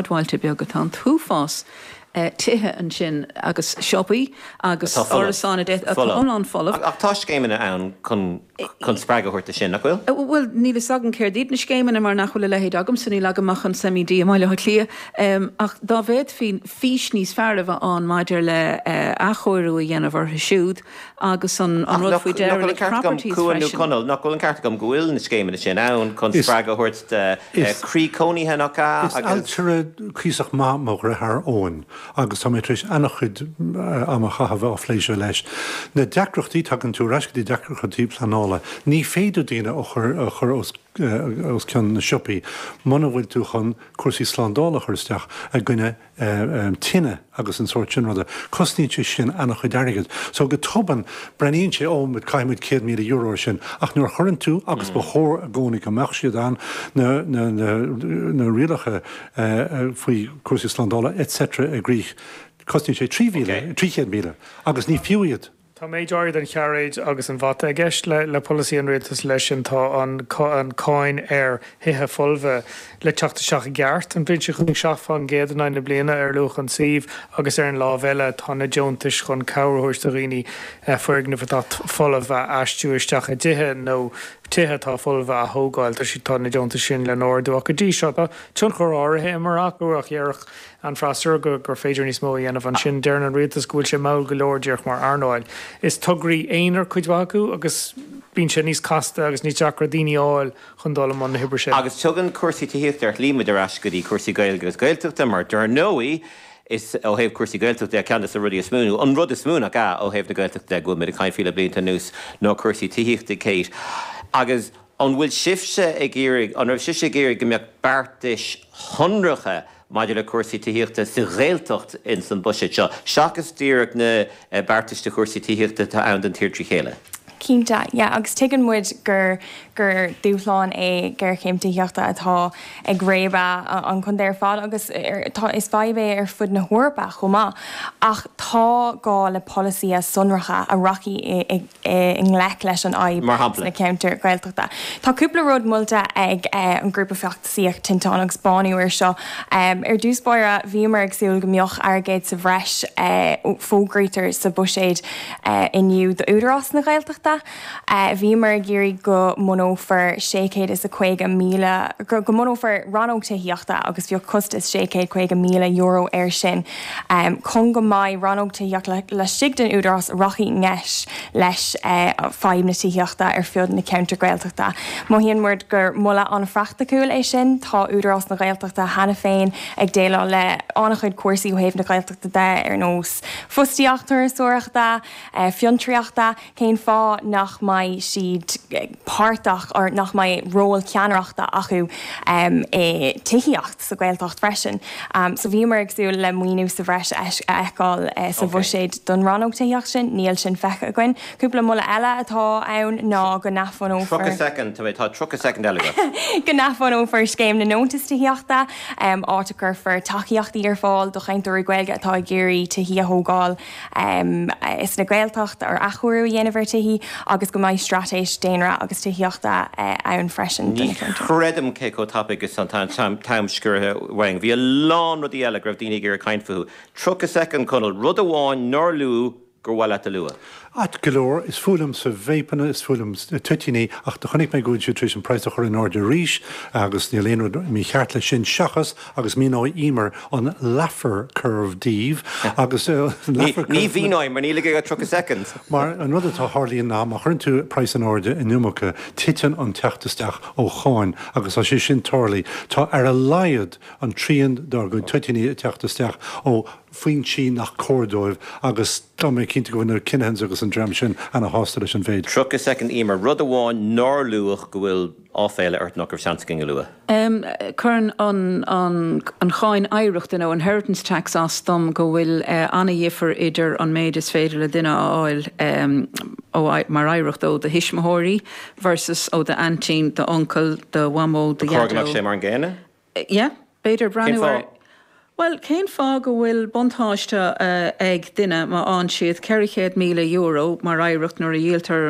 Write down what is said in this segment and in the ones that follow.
Bailte beaga. Tá an t-uafás tithe ansin agus siopaí agus árasáin atá iomlán folamh. Ach tá scéimeanna ann chun spreagadh a thabhairt dó sin, nach bhfuil? Bhuel, níl fhios agam céard iad na scéimeanna mar nach bhfuil a leithéid agamsa, níl agam ach an SEMI D i mBaile Átha Cliath. Ach dá bhféadfaí fís níos fearr a bheith ann maidir le athchóiriú a dhéanamh orthu siúd, Agus an rud faoi derelict properties freisin. Nach bhfuil an ceart agam go bhfuil na scéimeanna sin ann chun spreagadh a thabhairt do chroí cónaithe nach ea agus. Is ailtire cuíosach maith mo dheartháir Eoin agus tá mé tar éis ana-chuid ama a chaitheamh á phlé siúd leis. Na deacrachtaí, tagann tú ar ais go dtí deacrachtaí pleanála. Ní féidir daoine a chur, a chur os cionn na siopaí muna bhfuil tú chun cúrsaí slándála a chur isteach i gcoinne tine agus an sórt sin ruda. Cosnaíonn sé sin an-chuid airgid. So go tobann, breathnaíonn sé, Ó, bhuel, caithfidh muid céad míle euro air sin. Ach nuair a chuireann tú, agus ba chóir i gcónaí go mbeadh siad ann, na, na, na, na rialacha faoi chúrsaí slándála, etc. i gcrích, cosnaíonn sé trí mhíle, trí chéad míle. Agus ní fiú iad. Tá méid áirid an chairéid agus an bhata i gceist le polasaí an rialtas leis sin, tá an cáin ar thithe folmha le teacht isteach i gceart, an bhliain seo chugainn seacht faoin gcéad in aghaidh na bliana ar luach an tsuímh agus ar an láimh eile tá na deontais chun cabhair a thabhairt do dhaoine foirgnimh atá folamh a aistriú isteach i dtithe nó tithe atá folmha a thógáil. Tá siad, tá na deontais sin le n-ardú ach go dtí seo tá tionchar áirithe imeartha acu ach dhéarfadh an freasúra gur féidir níos mó a dhéanamh. Ansin deireann an rialtas go bhfuil sé mall go leor díreach mar earnáil. Is tograí aonair cuid mhaith acu agus bíonn sé níos casta agus níos deacra daoine a fháil chun dul i mbun na hoibre sin. Agus tugann cúrsaí tithíochta ar shlí muid ar ais go dtí cúrsaí Gaeilge agus Gaeltachta mar dar ndóigh is ó thaobh cúrsaí Gaeltachta de ceann de na rudaí is mó, nó an rud is mó nach ea, ó thaobh na Gaeltachta de go bhfuil muid ag caint faoi le blianta anuas ná cúrsaí tithíochta, Kate. Agus. An bhfuil sibhse ag iarraidh, an raibh sibhse ag iarraidh go mbeadh beartais shonracha maidir le cúrsaí tithíochta sa Ghaeltacht insan bhuiséad seo, seachas díreach na beartais do chúrsaí tithíochta atá ann don tír trí chéile? Cinnte, yeah, agus tuigeann muid gur, gur dúshlán é géarchéim tithíochta atá ag réabadh an chontae ar fad agus ar, tá, is fadhb é ar fud na hEorpa chomh maith. Ach tá gá le polasaithe sonracha a rachaidh i, i, i ngleic leis an fhadhb sna ceantair Ghaeltachta. Tá cúpla rud molta ag an ghrúpa feachtasaíochta Tinteán agus Bánú air seo. Ar dtús báire, bhíomar ag súil go mbeadh airgead sa bhreis fógartha sa bhuiséad inniu d'Údarás na Gaeltachta, bhíomar ag iarraidh go mbunófar sé chéad is a caoga míle, go mbunófar rannóg tithíochta agus bheadh costas sé chéad caoga míle euro air sin. Chun go mbeidh Rannóg Tithíochta laistigh den Údarás a rachaidh i ngleic le fadhb na tithíochta ar fud na gceantar Gaeltachta. Mothaíonn muid gur moladh an-phraicticiúil é sin. Tá Údarás na Gaeltachta cheana féin ag déileáil le an-chuid cúrsaí ó thaobh na Gaeltachta de ar nós fostaíocht, turasóireachta, fiontraíochta. cén fáth nach mbeidh siad páirteach or nach mbeidh ról ceannaireachta acu i tithíocht sa Ghaeltacht freisin. So bhíomar ag súil le maoiniú sa bhreis a fheiceáil sa bhuiséad don rannóg tithíocht sin, níl sin feicthe againn. Cúpla moladh eile atá ann ná go, go n-athbhunófar scéim na ndeontas tithíochta, áit a gcuirfear tacaíochtaí ar fáil do chainteoirí Gaeilge atá ag iarraidh tithí a thógáil. insa Ghaeltacht nó athchóiriú a dhéanamh ar thithí agus go mbeidh straitéis daonra agus tithíochta ann freisin do na ceantair. Ní chreidim cé chomh tapaidh is atá an t-am sciorraithe uainn. Bhí a lán rudaí eile a raibh daoine ag iarraidh caint fúthu. 30 soicind, Conall. Rud amháin nár luadh gur mhaith leat a lua? Ceart go leor, is fuath liomsa vapeanna, is fuath liom toitíní ach do chonaic mé go bhfuil siad tar éis an praghas a chur in airde arís agus níl aon rud mícheart leis sin seachas, agus míneoidh Emer an Laffer Curve daoibh agus. Ní mhíneoidh, mar níl ag Aodh ach 30 soicind! Mar, an rud a tharlaíonn ná, má chuireann tú praghas in airde an iomarca, titeann an teacht isteach ó cháin agus tá sé sin tarlaithe. Tá ar a laghad an trian dár gcuid toitíní ag teacht isteach ó fhoinsí nach cóir dóibh agus tá mé cinnte go bhfuil na Kinahans agus an dream sin ana shásta leis an mhéid. 30 soicind Emer, rud amháin nár luadh go bhfuil. áiféala ort nach raibh seans againn a lua. Cuireann an Cháin Oidhreachta nó Inheritance Tax as dom go bhfuil ana-dhifear idir an méid is féidir le duine a fháil mar oidhreacht ó do thuismitheoirí versus ó d'aintín, d'uncail, do mhamó, do dhaideo. Cén fáth nach bhfuil sé mar an gcéanna? Yeah, b'fhéidir breathnú air. Cén fáth? Bhuel, cén fáth go bhfuil buntáiste ag duine má fhaigheann siad €400,000 mar oidhreacht nuair a dhíoltar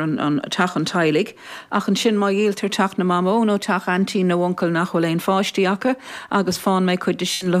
teach an teaghlaigh ach ansin má dhíoltar teach na mamó nó teach aintín nó uncail nach bhfuil aon pháistí acu agus faigheann mé cuid de sin le